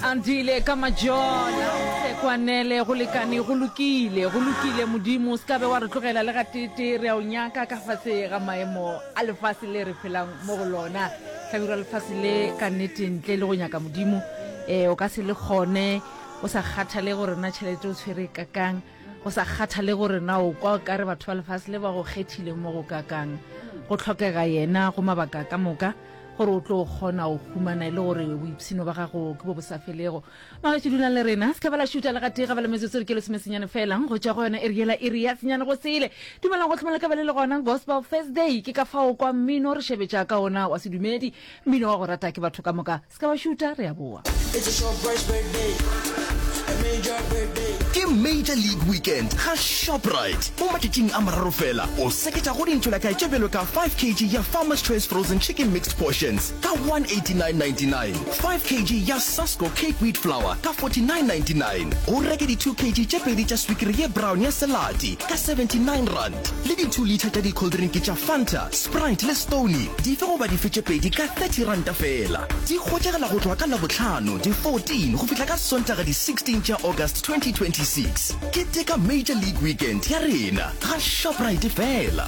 Andile ka majola sekwanele go lekane go lokile go lokile modimo se kabe wa re tlogela le gatete re a o nyaka ka fase ga maemo a lefase le re phelang mo go lona tlhabirwa lefase le ka nnete ntle le go nyaka modimo um o ka se le kgone o sa kgathale gore na tšhelete o tshwere kakang go sa kgathale gore na o kwa o kare batho ba lefase le ba go kgethile mo go kakang go tlhokega yena go mabaka ka moka gore o tlo kgona o humana e le gore boipshino ba gago ke bo bo sa felego magetso dulang le rena se ba la šuta le gatee ga ba le metsotso re ke lesomesenyane felang go tšwa go yona e riela e re ya senyane go sele dumelang go tlhomela ka bele le gona gospel thursday ke ka fao kwa mmino re šebetša ka ona wa sedumedi mmino wa go rata ke batho ka moka Se ka ba šuta, re a boa. It's a short price birthday. A major birthday. Ke Major League Weekend ga Shoprite. Mo matšatšing a mararo fela, o seketša go dintšho la kae tše bjalo ka 5 kg ya Farmer's Choice Frozen Chicken Mixed Portions ka 189.99, 5 kg ya Sasko Cape Wheat Flour ka 49.99, o reke di 2 kg tše pedi tša swikiri ye brown ya Selati ka R79. le di two litre tša dicoldrink tša fanta sprite le stony dife goba dife tše pedi ka thirty ranta fela di hwetšagela go tloga ka labohlano di fourteen go fihla ka sontaga di sixteen tša august twenty twenty six ke teka major league weekend ya rena ga shoprite fela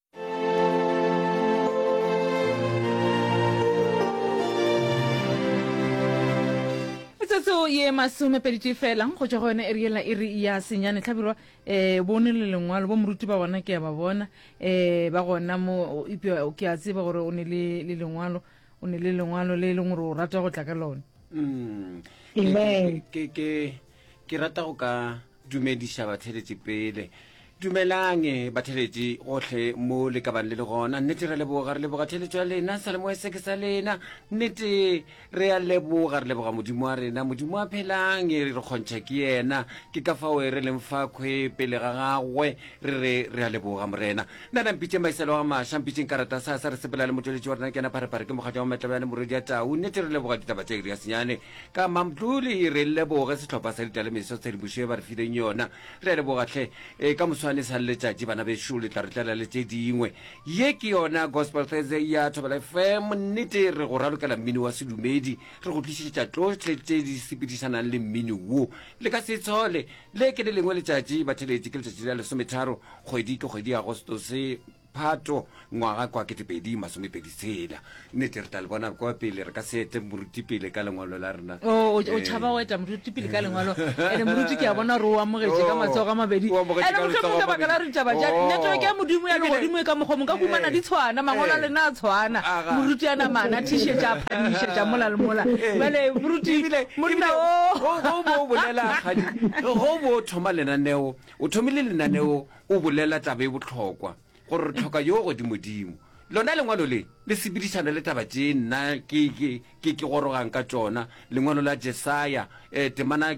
metsotso ye masomepeditee fela go tšwa go yone e riela e re ya senyane tlhabirwa um bone le lengwalo bo moruti ba gona ke ya ba bona um ba gona mo epja ke a tseba gore o ne le le lengwalo o ne le lengwalo le e leng gore o rata go tla ka lone mm. ke rata go ka Dumediša batheletši pele. Dumelang batheletši gohle mo le ka bang le le gona. Nnete re leboga, re leboga theletšo ya lena, salemoe se ke sa lena. Nnete re a leboga, re leboga Modimo wa rena, Modimo a phelang, re kgontšha ke yena. Ke ka fao re leng fa khwe pele ga gagwe, re re re a leboga Morena. Nna na mpitšeng maiselo a maša, mpitšeng karata sa sa re sepela le motšweletši wa rena ke yena Pharephare, ke mokgatšwa wa Matlabjane, morwedi ya tau. Nnete re leboga ditaba tša Iriasenyane. Ka Mamduli re leboge sehlopha sa ditalemiso tshedimošo ye ba re fileng yona. Re a leboga hle. E, ka moswane sa letšatši bana bešo le tla re tlela le tše dingwe. Ye ke yona Gospel Thursday ya Thobela FM. Nnete re go ralokela mmino wa sedumedi, re go tlišetša tšohle tše di sepedišanang le mmino wo. Le ka se itshole. Le ke le lengwe letšatši batheletši ke letšatši la lesometharo kgwedi ke kgwedi ya Agostose. Phato, ngwaga kwa ketepedi masomepedi tshela. Nnete, re tla le bona kwa pele, re ka se etle moruti pele ka lengwalo la rena. O, o, o tšhaba go etla moruti pele ka lengwalo. Ene moruti ke a bona gore o amogetše ka matsogo a mabedi. O amogetše Ene ka mohlomong letsogo ka a baka la mabedi. ditaba tša Oo. network ya Modimo ya Ebile- legodimo e ka mokgwa mong ka humana di tshwana, mangwalo a Ee. lena a tshwana. Aga. Moruti a namana, a thišetša, a phadišetša mola le mola. Ee. Bjale moruti, Ebile- monna ebile o. go- go bo o bolela kgadi go bo o thoma lenaneo o thomile lenaneo O bolela taba e bohlokwa, gore re hloka yo o godimodimo. Lona lengwalo le, le sepedišana le taba tše nna ke, ke, ke, ke gorogang ka tšona, lengwalo la Jesaya, eh, temana,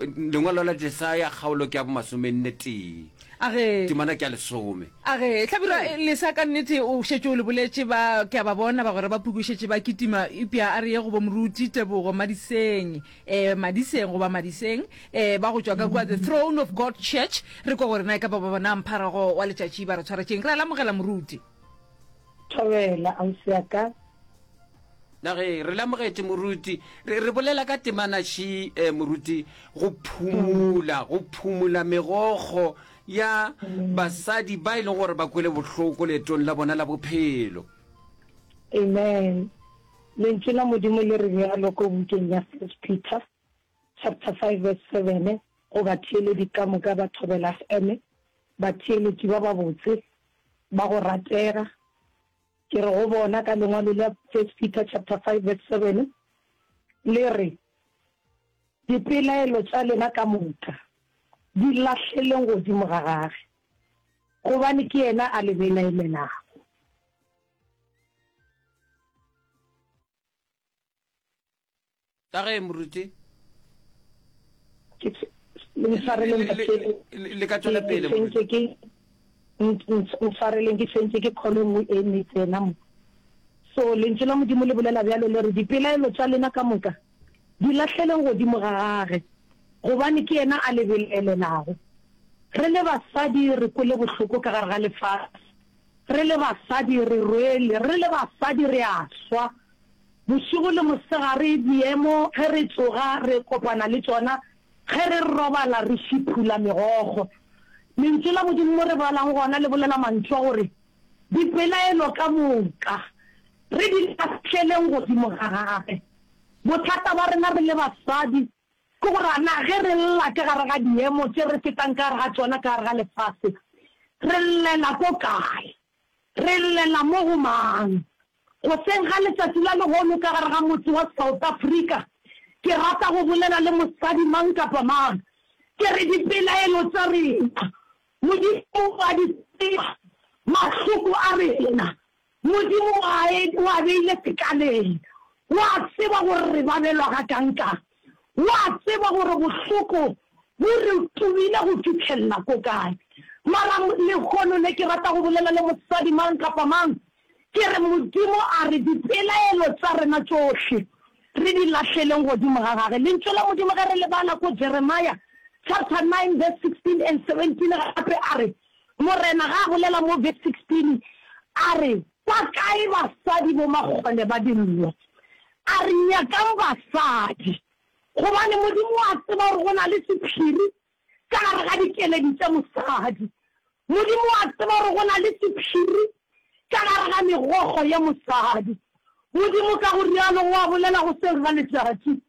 lengwalo la Jesaya, kgaolo ke ya bomasomenne tee. A re, Temana ke ya lesome. A re, Hlabirwa, Ee. lesa ka nnete o šetše o le boletše, ba, ke a ba bona bagwera ba phukwe šetše ba kitima, eupša a re ye go bo Moruti, Tebogo, Madisenyi. eh, madiseng goba madiseng eh, ba go tšwa ka kua the throne of god church re kwa gore na e ka ba ba bona mpharago wa letšatši ba re tshwara tšeng re a lamogela moruti thobela ausi ya ka nage re lamogetse moruti re re bolela ka temanaši um moruti go phumula go phumula megogo ya basadi ba e leng gore ba kwele bohloko leetong la bona la bophelo amen Lentšu la Modimo le re bjalo ko bukeng ya First Peter chapter 5 verse 7, Go batheeledi ka moka ba thobela feme, batheeletši ba babotse, ba go ratega. Ke re go bona ka lengwalo la First Peter chapter 5 verse 7, le re, Dipelaelo tša lena ka moka di lahleleng godimo ga gage, gobane ke yena a le belaelelago. ka ge moruti le ka tswela pele ntshwareleng ke tshwentse ke kgolo e nngwe e ne tsena mo so lentswe la modimo le bolela bjalo le re dipelaelo tša lena ka moka di lahleleng godimo ga gage gobane ke yena a lebelelelago re le basadi re kwele bohloko ka gare ga lefase Re le basadi re rwele, re le basadi re a swa. Bošego le mosegare diemo ge re tsoga re kopana le tšona, ge re robala re šiphula megogo. Lentšu la Modimo mo re balang gona le bolela mantšu a gore, Dipelaelo ka moka re di lahleleng godimo ga gagwe. Bothata ba rena re le basadi Ke gore a na ge re lla ka gare ga diemo tše re fetang ka gare ga tšona ka gare ga lefase, re llela ko kae? Re llela mo go mang? Goseng ga letšatši la lehono ka gare ga motse wa South Africa, ke rata go bolela le mosadi mang kapa mang, ke re dipelaelo tša rena Modimo o a di tseba, mahloko a rena Modimo o a e, o a beile sekaleng. O a tseba gore re babelwa gakankang. O a tseba gore bohloko bo re tubile go fihlella ko kae. Mara lehono le ke rata go bolela le mosadi mang kapa mang, ke re Modimo a re dipelaelo tša rena tšohle re di lahleleng godimo ga Gage. Lentšu la Modimo ge re le bala ko Jeremiah chapter nine verse sixteen and seventeen gape a re, Morena ge a bolela mo Vese 16, a re, Kwa kae basadi bomakgole ba dillo? A re, Nyakang basadi. Gobane Modimo o a tseba gore go na le sephiri ka gare ga dikeledi tša mosadi. Modimo o a tseba gore go na le sephiri ka gare ga megokgo ya mosadi. Modimo ka go rialo o a bolela go seng ga letšatši.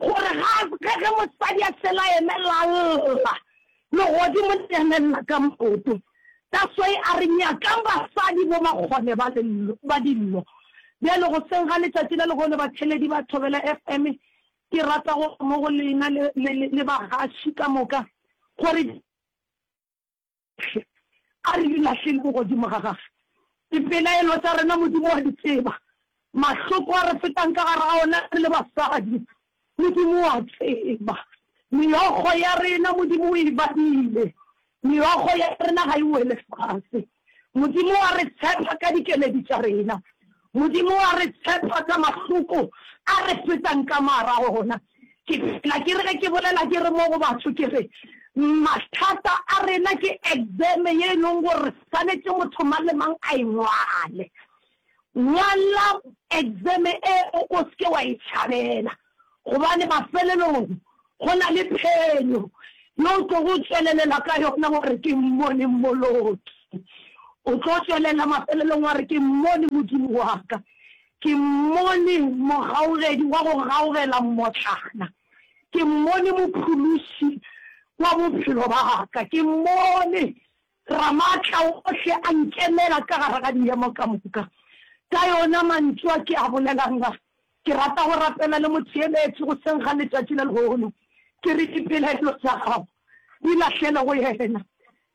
Gore ga ge ge mosadi a fela a emelela a lla, legodimo le ya nelela ka maoto. That's why a re, Nyakang basadi bo makgone ba lello, ba dillo. Bjale goseng ga letšatši la lehono, batheledi ba Thobela FM, ke rata go mo go lena le, le, le, le bagaši ka moka, gore. Hle a re di lahleng ko godimo ga Gagwe. Dipelaelo tša rena Modimo wa di tseba, mahloko a re fetang ka gare ga ona re le basadi Modimo o a tseba. Meokgo ya rena Modimo o e badile, meokgo ya rena ga e wele fase. Modimo wa re tshepa ka dikeledi tša rena. Modimo wa re tshepa ka mahloko a re fetang ka marago gona. Ke phela ke re ge ke bolela ke re mo go batho ke re, Mathata a rena ke exeme ye e leng gore swanetše motho mang le mang a e ngwale. Ngwala exeme eo o se ke wa e tšhabela. Gobane mafelelong go na le phenyo ye o tlogo tšwelelela ka yona wa re, Ke mmone mmoloki. O tlo tšwelela mafelelong wa re, Ke mmone Modimo wa ka. Ke mmone mogaogedi wa go gaogela mmotlana. Ke mmone mophološi wa bophelo ba ka. Ke mmone Ramaatlaohle a nkemela ka gare ga dihemo ka moka. Ka yona mantšu a ke a bolelang a, ke rata go rapela le Motheeletši goseng ga letšatši le lehono, ke re dipelaelo tša gago di lahlele go yena.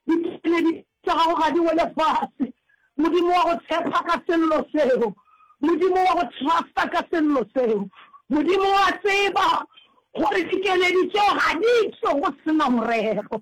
Dipeledi tša gago ga di wele fase, Modimo wa go tshepa ka sello seo, Modimo wa go trusta ka sello seo. Modimo o a tseba gore dikeledi tšeo ga di tšwe go se na morero.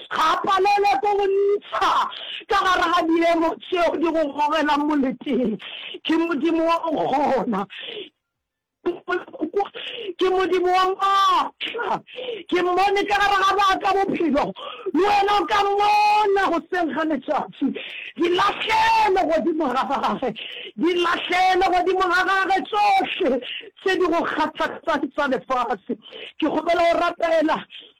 Ga a palelwe ke go ntsha ka gare ga diemo tšeo di go gogelang moleteng. Ke Modimo wa go kgona. Ke Modimo wa maatla. Ke Mmone ka gare ga ba ka bophelo. Le wena o ka Mmona goseng ga letšatši. Di lahlele godimo ga Gagwe. Di lahlele godimo ga Gagwe tšohle tše di go kgathatsang tsa lefase. Ke kgopela go rapela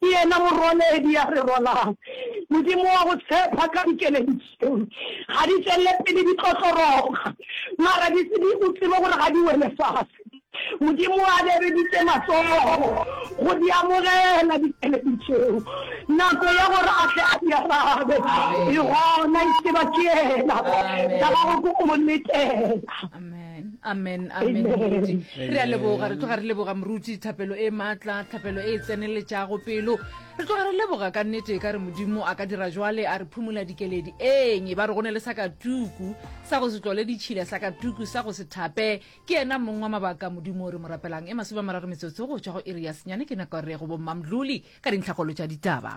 Ke yena morwaledi a re rwalang, Modimo wa go tshepha ka dikeledi tšeo. Ga di tšwelele pele di tlotloroga, mara di se di o tsebe gore ga di wele fase. Modimo a bereditše matsogo go di amogela dikeledi tšeo. Nako ya gore a tle a di arabe e gona, e tseba ke yena, sa gago ke go mo letela. amen amen moruti re a leboga re tloga re leboga moruti thapelo e maatla thapelo e e tseneletšago pelo re tloga re leboga ka nnete ka re modimo a ka dira jwale a re phumola dikeledi eng e ba re go ne le sa ka tuku sa go se tlole ditšhila sa ka tuku sa go se thape ke yena mong wa mabaka modimo re mo rapelang e masome a mararo metsotso go tšwa go iri ya senyane ke nako re go bommamdlole ka dintlhakgolo tša ditaba